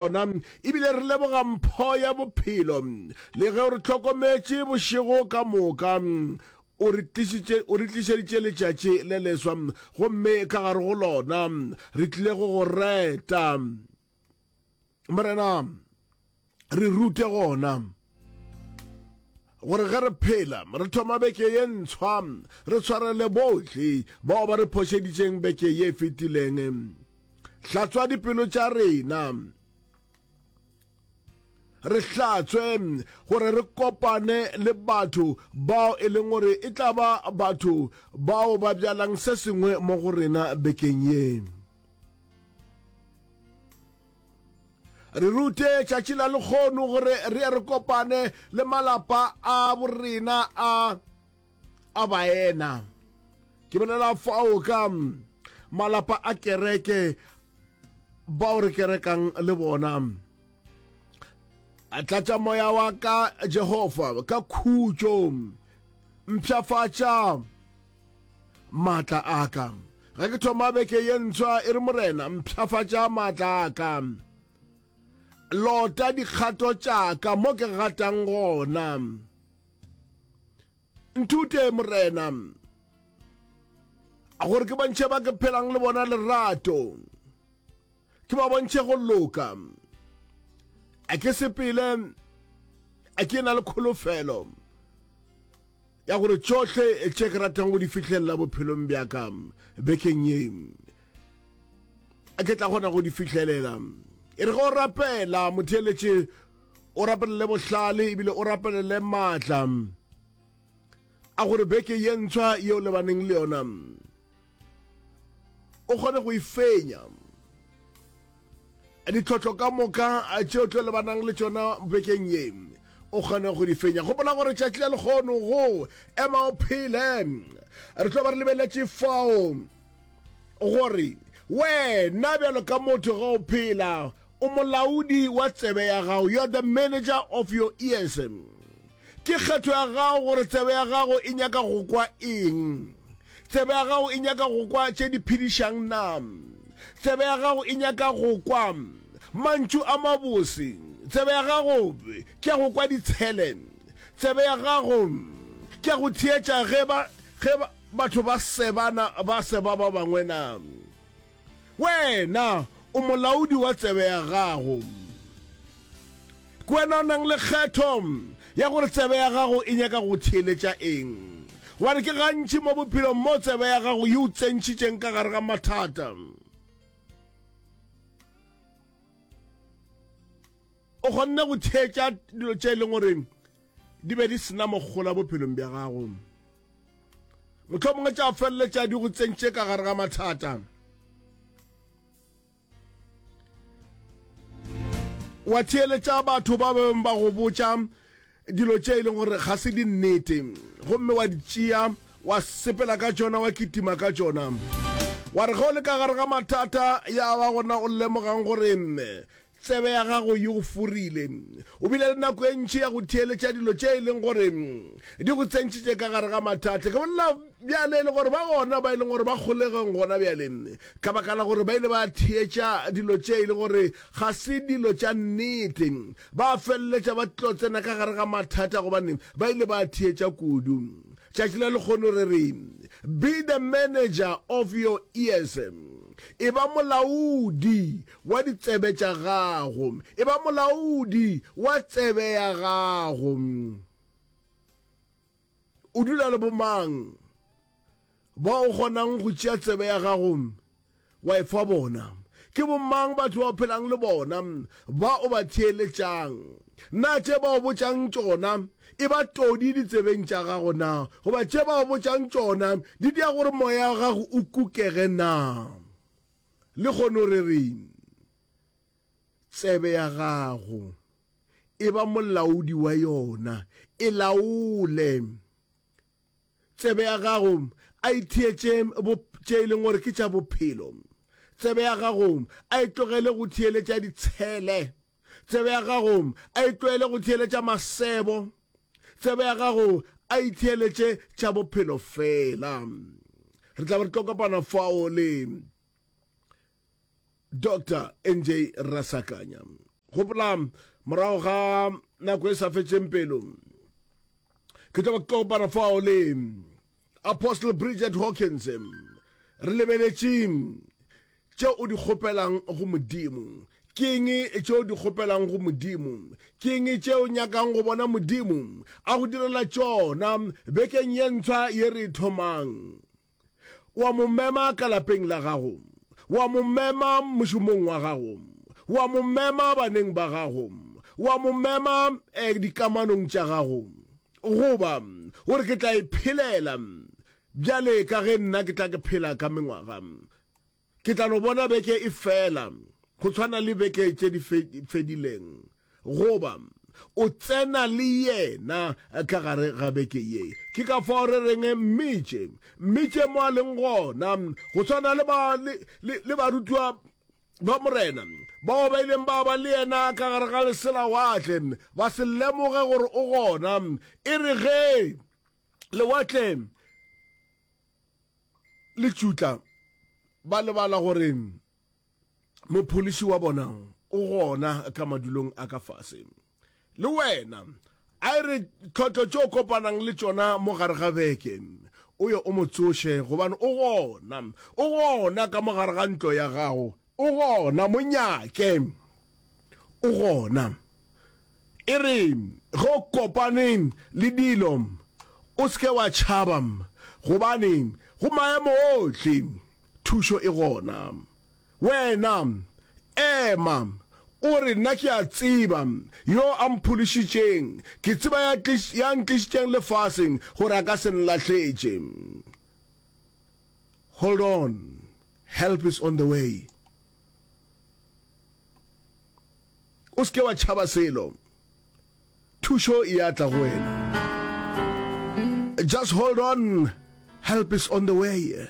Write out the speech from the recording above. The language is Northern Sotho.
ona ebile re leboga mpho ya bophelo le ge o re hlokometše bošego ka moka o re tlišeditše letšatši le leswa gomme ka gare go lona re tlile go go reta morena re rute gona gore ge re phela re thoma beke ye ntshwa re tshwarele bohle bao ba re phošeditšeng beke ye e fetileng hlatswa dipelo tša rena re hlatswe gore re kopane le batho bao e leng gore e tla ba batho bao ba bjalang se sengwe mo go rena bekeng yeng re rute tšatši la lekgono gore re ye re kopane le malapa a borena a a baena ke bolela fao ka malapa a kereke bao re kerekang le bona a tlatša moya wa ka jehova ka khutšo mpšhafatša Maatla a ka. Ge ke thoma beke ye ntswa e re Morena, mpšhafatša maatla a ka. Lota dikgato tša ka mo ke gatang gona. Nthute Morena gore ke bontšhe ba ke phelang le bona lerato ke ba bontšhe go loka a ke sepele a ke na le kholofelo Ya gore tšohle tše ke ratang go di fihlelela bophelong bja ka bekeng ye ke tla kgona go di fihlelela e re go rapela motheeletše o rapelele bohlale ebile o rapelele maatla a gore beke ye ntshwa yeo lebaneng le yona o kgone go e fenya ditlhotlho ka moka tšeo tlo lebanang le tšona bekeng ye o kgone go di fenya gopola gore tšatši la lekgono go ema o phele re tlo ba re lebeletše fao gore wena bjalo ka motho ga o phela o molaodi wa tsebe ya gago you are the manager of your ears Ke kgetho ya gago gore tsebe ya gago e nyaka go kwa eng. Tsebe ya gago e nyaka go kwa tše di phedišang na? Tsebe ya gago e nyaka go kwa mantšu a mabose? Tsebe ya gago ke ya go kwa ditshele? Tsebe ya gago ke ya go theetša ge ba, ge ba, batho ba sebana, ba seba ba bangwe na? Wena o molaodi wa tsebe ya gago. Ke wena o nang le kgetho ya gore tsebe ya gago e nyaka go theeletša eng. Gobane ke gantši mo bophelong mo tsebe ya gago e o tsentšhitšeng ka gare ga mathata. O kgonne go theetša dilo tše e leng gore di be di sena mogola bophelong bja gago motlho mongwe tša feleletša di go tsentše ka gare ga mathata wa theeletša batho ba beng ba go botša dilo tše e leng gore ga se di nnete gomme wa di tšea wa sepela ka tšona wa kitima ka tšona wa re ge o le ka gare ga mathata ya ba gona o lemogang gore Tsebe ya gago e go furile. O bile le nako e ntši ya go theeletša dilo tše e leng gore di go tsentšitše ka gare ga mathata. Ke bolela bjale e le gore ba gona ba e leng gore ba kgolegong gona bjale ka baka la gore ba ile ba theetša dilo tše e le gore ga se dilo tša nnete. Ba feleletša ba tlo tsena ka gare ga mathata gobane ba ile ba theetša kudu. Tšatši la lekgono re re, Be the manager of your ears. E ba molaodi wa ditsebe tša gago, eba molaodi wa tsebe ya gago. O dula le bomang bao o kgonang go tšea tsebe ya gago wa e fa bona? Ke bomang batho ba o phelang le bona ba o ba theeletšang? Na tše ba o botšang tšona e ba todi ditsebeng tša gago na, goba tše ba o botšang tšona di dira gore moya wa gago o kukege na? Lehono re re tsebe ya gago e ba molaodi wa yona, e laole tsebe ya gago, a e theetše tše e leng gore ke tša bophelo. Tsebe ya gago a e tlogele go theeletša ditshele. Tsebe ya gago a e tlwaele go theeletša masebo. Tsebe ya gago a e theeletše tša bophelo fela. Re tla be re tlo kopana fao le Dr. NJ Rasakanya. Gopola morago ga nako e sa fetšeng pelo ke tlo ba kopana fao le Apostle Bridget Hawkins, Re lebeletšeng tše o di kgopelang go Modimo? Keng tše o di kgopelang go Modimo? Keng tše o nyakang go bona Modimo a go direla tšona bekeng ye ntshwa ye re e thomang? Wa mo mema ka lapeng la gago? Wa mo mema mošomong wa gago? Wa mo mema baneng ba gago? Wa mo mema eh, dikamanong tša gago? Goba, O re, Ke tla e phelela. Bjale, ka ge nna ke tla ke phela ka mengwaga, ke tla no bona beke e fela, go tshwana le beke tše di fedileng. Goba, O tsena le Yena ka gare ga beke ye. Ke ka fao re reng, Mmitše, mmitše mo a leng gona, go swana le, le, le, le barutiwa ba Morena, bao ba ileng ba ba le yena ka gare ga leselawatle, ba se lemoge gore o gona, e re ge lewatle le tšutla, ba lebala gore mopholiši wa bona o gona ka madulong a ka fase. Le wena. A e re tlhotlo tše o kopanang le tšona mo gare ga beke, o ye o mo tsoše, gobane o gona. O gona ka mo gare ga ntlo ya gago. O gona. Mo nyake. O gona. E re ge o kopane le dilo, o se ke wa tšhaba, gobane go maemo ohle, thušo e gona. Wena, ema. O re, Nna ke a tseba Yo a mpholišitšeng. Ke tseba ya, ya ntlišitšeng lefaseng, gore a ka se nlahletše. Hold on. Help is on the way. O se ke wa tšhaba selo. Thušo e a tla go wena. Just hold on. Help is on the way.